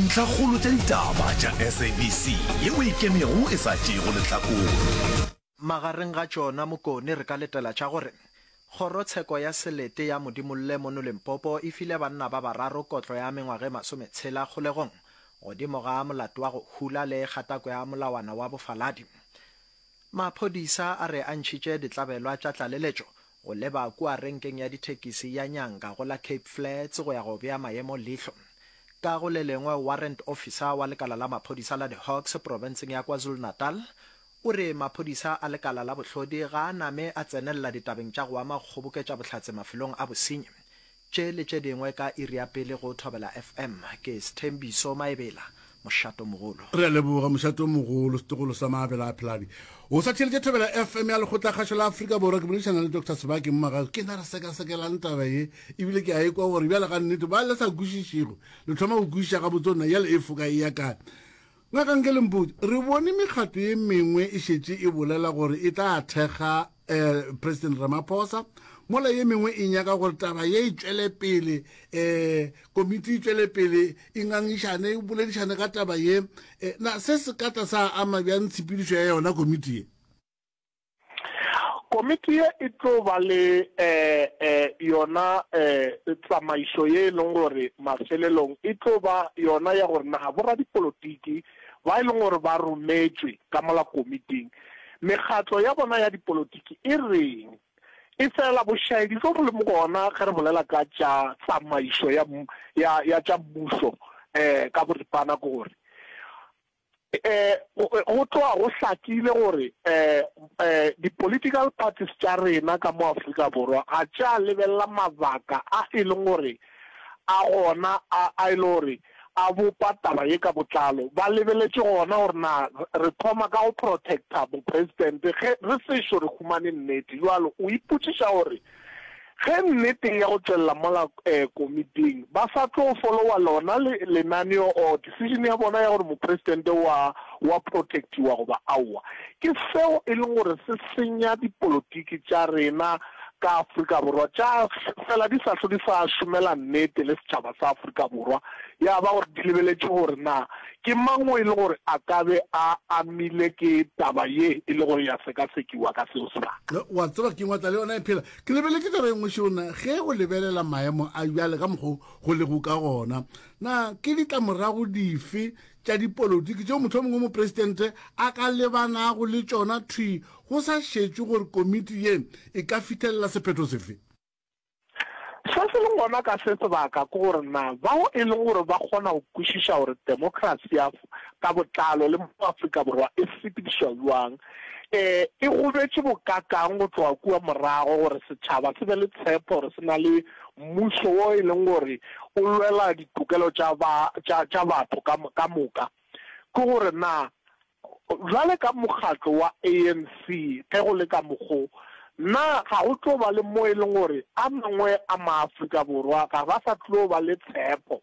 Ntlhakgolo tša ditaba tša SABC ye o e kemego e sa tšeego lehlakore. Magareng ga tšona Mokone re ka letela tša gore, Kgorotsheko ya Selete ya Modimolle mono Limpopo e file banna ba bararo kotlo ya mengwaga e masometshela kgolegong godimo ga molato wa go hula le kgatako ya molawana wa bofaladi. Maphodisa a re a ntšhitše ditlabelwa tša tlaleletšo go leba kua renkeng ya dithekisi ya Nyanga go la Cape Flats go ya go bea maemo leihlo. Ka go le lengwe, warrant officer wa lekala la maphodisa la diHawks profenseng ya KwaZulu-Natal o re maphodisa a lekala la bohlodi ga a name a tsenelela ditabeng tša go ama go kgoboketša bohlatse mafelong a bosenyi. Tše le tše dingwe ka iri ya pele go Thobela FM. Ke Sthembiso Maebela, Mošato Mogolo. Re a leboga, Mošato Mogolo. Setogolo sa Maabela a Phelane o sa theeletše Thobela FM ya Lekgotlakgašo la Afrika Borwa. Ke boledišana le Doctor Sebaki Mmagago. Ke na re sekasekelang taba ye ebile ke a e kwa gore bjale gannete ba le sa kwešišego le thoma go kwešiša gabotse gore na yale e foka e ya kae. Ngaka Ngelembudi, re bone mekgatlo ye mengwe e šetše e bolela gore e tla thekga um President Ramaphosa, mola ye mengwe e nyaka gore taba ye e tšwele pele, um komiti e tšwele pele e ngangišane, e boledišane ka taba ye. Na se se ka tla sa ama bjang tshepedišo ya yona komiti ye? Komiti ye e tlo ba le yona tsamaišo ye e leng gore mafelelong e tlo ba yona ya gore na boradipolotiki ba e leng gore ba rometšwe ka mola komiting mekgatlo ya bona ya dipolotiki e reng. Efela bošaedi bjo bo leng gona ge re bolela ka tša tsamaišo ya tša mmušo ka boripana ke gore, Go tloga go hlakile gore di-political parties tša rena ka mo Afrika Borwa ga tša lebelela mabaka a e leng gore a gona a e le gore a bopa taba ye ka botlalo. Ba lebeletše gona gore na re thoma ka go protecta bo-president ge re sešo re humane nnete. Bjalo o ipotšiša gore Ge nnete ya go tšwelela mola komiting ba sa tlo folowa lona lenaneo or decision ya bona ya gore Mopresidente wa wa protectiwa goba aowa, ke seo e leng gore se senya dipolotiki tša rena ka Afrika Borwa tša fela di sa hlwe di sa šomela nnete le setšhaba sa Afrika Borwa, ya ba gore di lebeletše gore na Ke mang o e le gore a ka be a amile ke taba ye e le gore ya sekasekiwa ka seo sebaka? Ge o a tseba ke eng wa tla le yona e phela. Ke lebeletše taba e nngwe šeona, ge o lebelela maemo a bjale ka mokgwa o go lego ka gona, na ke ditlamorago dife tša dipolotiki tšeo mohlomong yo Mopresidente a ka lebanago le tšona thwi go sa šetšwe gore komiti ye e ka fithelela sephetho sefe? Se se leng gona ka se sebaka ke gore na bao e lego gore ba kgona go kwešiša gore demokrasi ya ka botlalo le mo Afrika Borwa e sepedišwa bjang e e gobetše bokakang go tloga kua morago gore setšhaba se be le tshepo gore se na le mmušo wo e leng gore o lwela ditokelo tša batho ka moka ke gore na Bjale ka mokgatlo wa ANC, ge go le ka mokgo, na ga go tlo ba le mo e leng gore a mangwe a Maafrika Borwa ga ba sa tlo ba le tshepo?